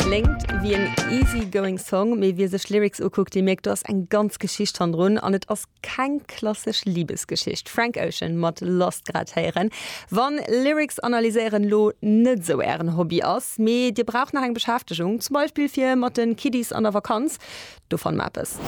Kléngt wéi en easy going Song, mee wie sech Lyrics ukuckt, dee mierkt do ass eng ganz Geschicht hannendrun an et ass keng klassesch Libesgeschicht. Frank Ocean mat Lost grad héieren. Wann Lyrics analyséieren lo net esou ären Hobby ass, mee dir braucht nach eng Beschäftegung, zum Beispill fir mat den Kiddies an der Vakanz, Do fanne mer eppes.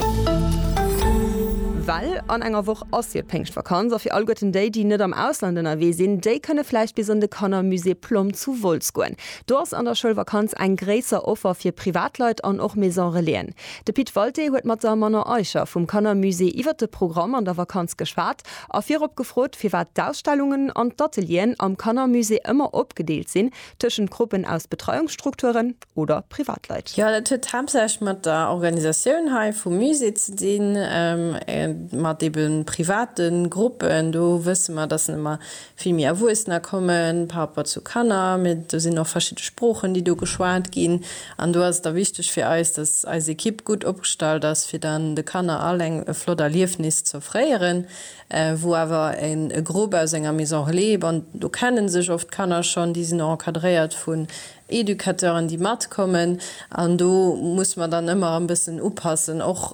Well an enger Woch ass jo d'Péngschtvakanz a fir alleguerten déi, déi net am Ausland ënnerwee sinn, déi kënne vläicht bis an de Kannermusée Plomm zu Wolz goen. Do ass an der Schoulvakanz eng gréisser Offer fir Privatleit an och Maison-relaisen. De Pit Walté huet mat der Manon Eicher vum Kannermusée iwwer de Programm an der Vakanz geschwat a virop gefrot, firwat d'Ausstellungen an d'Atelieren am Kannermusée ëmmer opgedeelt sinn tëschent Gruppen aus Betreiungsstrukturen, oder Privatleit. Jo, dat huet haaptsächlech mat der Organisatioun hei vum Musée ze dinn, mat ebe private Gruppen. Do wësse mer, dass ëmmer vill méi Erwuessener kommen par rapport zu Kanner. Mee do sinn och verschidde Sproochen, déi do geschwat ginn. An do ass et da wichteg fir eis, dass eis Ekipp gutt opgestallt ass, fir dann de Kanner all eng e flott Erliefnis ze offréieren, wou awer e Grupp aus enger Maison relais, bon do kenne sech oft d'Kanner schonn, déi sinn och encadréiert vun Educateuren déi matkommen an do muss mer dann ëmmer e bëssen upassen. Och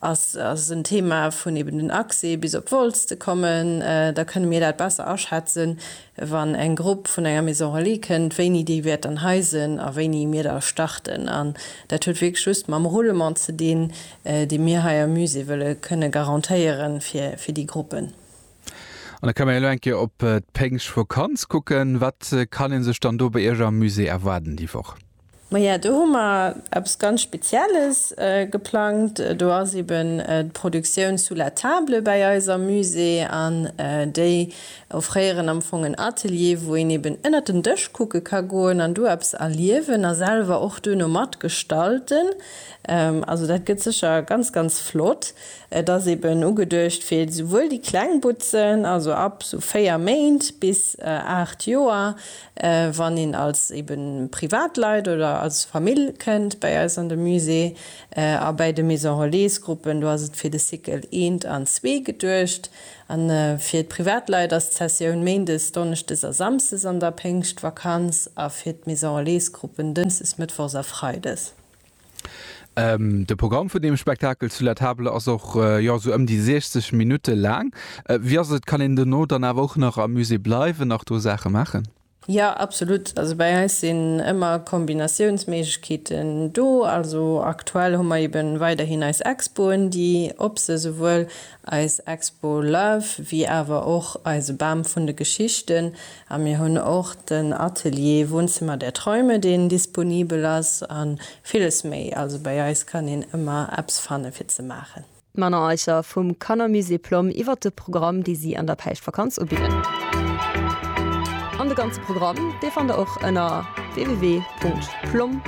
ass ass en Thema vun eben den Accès bis op Wolz ze kommen. Da kënne mir dat besser aschätzen wann eng Grupp vun enger Maison Relais kënnt, wéini déi wäert dann hei sinn a wéini mir da starten. An dat huet wierklech just mam Roulement ze dinn dee mir hei am Musée wëlle kënne garantéieren fir fir déi Gruppen. An da ka mir elo eng Kéier op d'Péngschtvokanz kucken. Wat kann ee sech dann do bei Iech am Musée erwaarden déi Woch? Maja, do hu mer eppes ganz Spezielles geplangt. Do ass eben d'Produktioun Sous la table bäi eis am Musée an déi offréieren am Fong en Atelier, wou een eben ënnert den Dësch kucke ka goen an do eppes erliewen a selwer och duerno matgestalten. Also dat gëtt sécher ganz, ganz flott. Et ass eben ugeduecht fir esouwuel déi kleng Butzen, also ab sou 4 Méint bis 8 Joer, wann een als eben Privatleit oder als Famill kënnt bäi eis an de Musée. A bäi de Maison Relais Gruppen, do ass et fir de Cycle eent an zwee geduecht. An fir d'Privatleit ass d'Sessioun méindes, donneschdes a samsdes an der Péngschtvakanz a fir d'Maison Relais Gruppen dënschdes, mëttwochs a freides. De Programm vun deem Spektakel zu La Table ass och jo sou ëm déi 60 Minutte laang. Wéi ass et, kann een dono dann awer och nach am Musée bleiwen, nach do Saache maachen? Jo, absolut. Also bei eis sinn ëmmer Kombinatiounsméiglechkeeten do. Also aktuell hu mer eeben weiderhin eis Expoen, déi op se souwuel Eis Expo Love, wéi awer och eise Bam vun de Geschichten. A mir hunn och den Atelier Wohnzimmer der Träume, deen disponibel ass, a villes méi. Also bei eis kann een ëmmer eppes fanne fir ze maachen. D'Männer Eicher vum Kannermusée Plomm iwwert de Programm, dee si an der Päischtvakanz ubidden. An de ganze Programm, dee fannt der och ënner www.plomm.